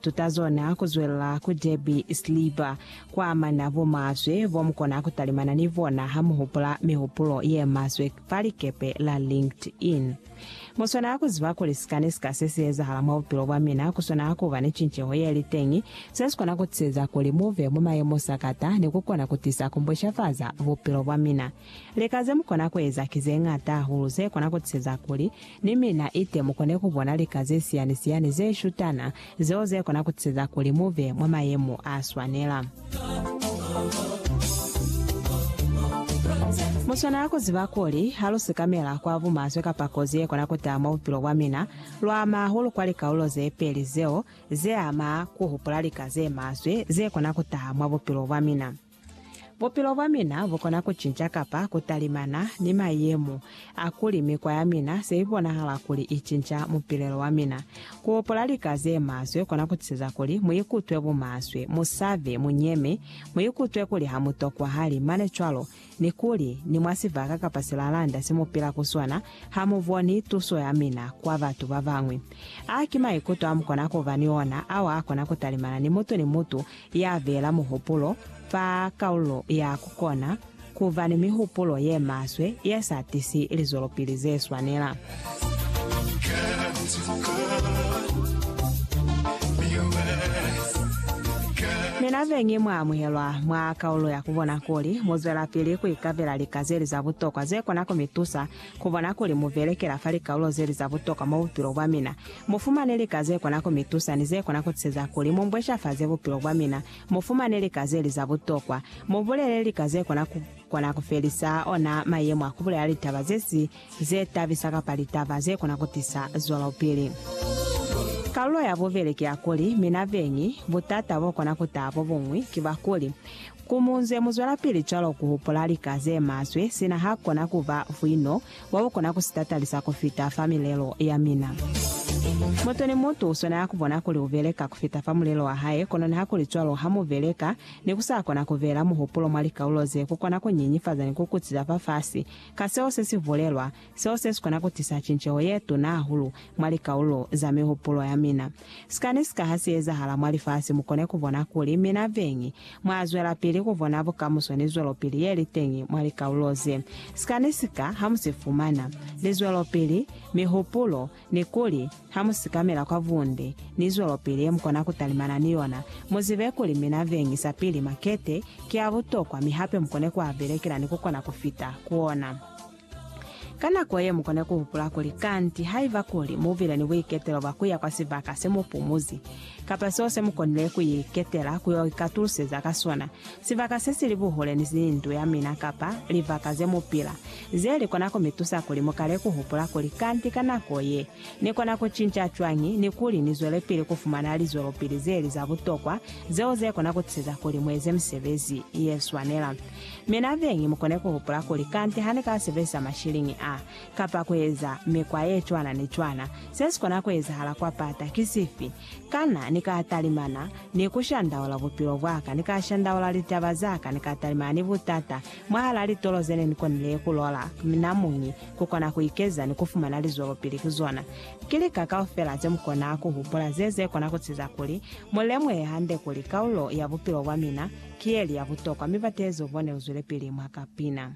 Tutazona kuzwelela ku Derby sliba kwaamana bomaswe bomukona kutalimana ni bona hamuhupula mihupulo yemaswe fa likepe la LinkedIn. Muswanela kuziba kuli sikani sika sesiezahala mwa bupilo bwamina kuswanela kuba ni cinceho yeliteñi sesikona kutisieza kuli muve mwa mayemo sakata ni kukona kutisa kumbwishafaza bupilo bwamina. Lika ze mu kona ku eza ki ze ñata hahulu ze kona ku tiseza kuli ni mina ite mu kone ku bona lika ze siyani-siyani ze shutana, zeo ze kona ku tiseza kuli mu be mwa mayemo a swanela. Mu swanela ku ziba kuli ha lu sikamela kwa bumaswe kapa kozi ye kona ku taha mwa bupilo bwa mina, lu ama hahulu kwa likalulo ze peli zeo ze ama ku hupula lika ze maswe ze kona ku taha mwa bupilo bwa mina. Bupilo bwa mina bu kona ku cinca kapa ku talimana ni mayemo a kuli mikwa ya mina se i bonahala kuli i cinca mupilelo wa mina. Ku hopola lika ze maswe kona ku tisiza kuli mu ikutwe bumaswe, mu sabe, mu nyeme, mu ikutwe kuli ha mu tokwahali, mane cwalo ni kuli ni mwa sibaka kapa silalanda se mu pila ku sona ha mu boni tuso ya mina kwa batu ba bañwi. A ki maikuto a mu kona ku ba ni ona ao a kona ku talimana ni mutu ni mutu ya beela muhupulo fa kaulo ya ku kona ku ba ni mihupulo ye maswe ye sa tisi lizwelopili ze swanela. Mina be ngi mwa amuhelwa mwa kaulo ya ku bona kuli mu zwelapili ku ikabela lika ze li za butokwa ze kona ku mi tusa ku bona kuli mu belekela fa likaulo ze li za butokwa mwa bupilo bwa mina. Mu fumane lika ze kona ku mi tusa ni ze kona ku tiseza kuli mu mbweshafaze bupilo bwa mina. Mu fumane lika ze li za butokwa. Mu bulele lika ze kona ku kona ku felisa ona mayemo a ku bulela litaba ze si ze tabisa kapa litaba ze kona ku tisa zwelopili. Kalulo ya bubeli ki ya kuli, mina beñi, butata bo kona ku taha bo buñwi ki bwa kuli, ku mu nze mu zwelapili cwalo ku hupula lika ze maswe sina ha kona ku ba vwino wa u kona ku si tatalisa ku fita fa milelo ya mina. Mutu ni mutu u swanela ku bona kuli u beleka ku fita fa mulelo wa hae, kono nihakulicwalo, ha mu beleka ni ku sa kona ku beela muhupulo mwa likaulo ze ku kona ku nyenyefaza ni ku kutsi za fafasi. Ka seo se si bulelwa, seo se si kona ku tisa cinceho ye tuna hahulu mwa likaulo za mihupulo ya mina. Sikani sika ha si ezahala mwa lifasi mu kone ku bona kuli mina Veng Mwa zwelapili ku bona bukamuso ni zwelopili ye li teñi mwa likaulo ze sika ni sika ha mu si fumana, lizwelopili, mihupulo, ni kuli ha mu sikamela kwa bunde ni zwelopili ye mu kona ku talimana ni yona. Mu zibe kuli mina veñi sapili makete ki a butokwa mi hape mu kone ku a belekela ni ku kona ku fita ku ona. Ka nako ye, mu kona ku hupula kuli, Kanti haiba kuli mu bile ni buiketelo bwa ku ya kwa sibaka se mu pumuzi, kapa seo se mu konile ku iketela ku yo ikatuluseza ka sona, sibaka se si li buhule ni ndu ya mina kapa libaka ze mu pila, ze li kona ku mi tusa kuli mu kale ku hupula kuli, Kanti ka nako ye, ni kona ku cinca cwañi ni kuli ni zwelepili ku fumana lizwelopili ze li za butokwa zeo ze kona ku tiseza kuli mu eze misebezi ye swanela? Mi nabeñi mukone kuhupula kuli kanti hanika sebelisa mashiliñi a, kapa kueza mikwa yecwana ni cwana, sesikona kuezahala kwa pata ki sifi? Kana nika talimana ni kushandaula bupilo bwaka, nika shandaula litaba zaka, nika talimana ni butata mwahala litolo zene nikonile kulola namuñi kukona kuikeza ni kufumana lizwelopili ku zona? Ki lika kaufela zemukona kuhupula ze zekona kutiza kuli mulemuhe hande kuli kaulo ya bupilo bwamina Ki yeli ya butokwa mi batezo bone uzwelepili mwa ka pina.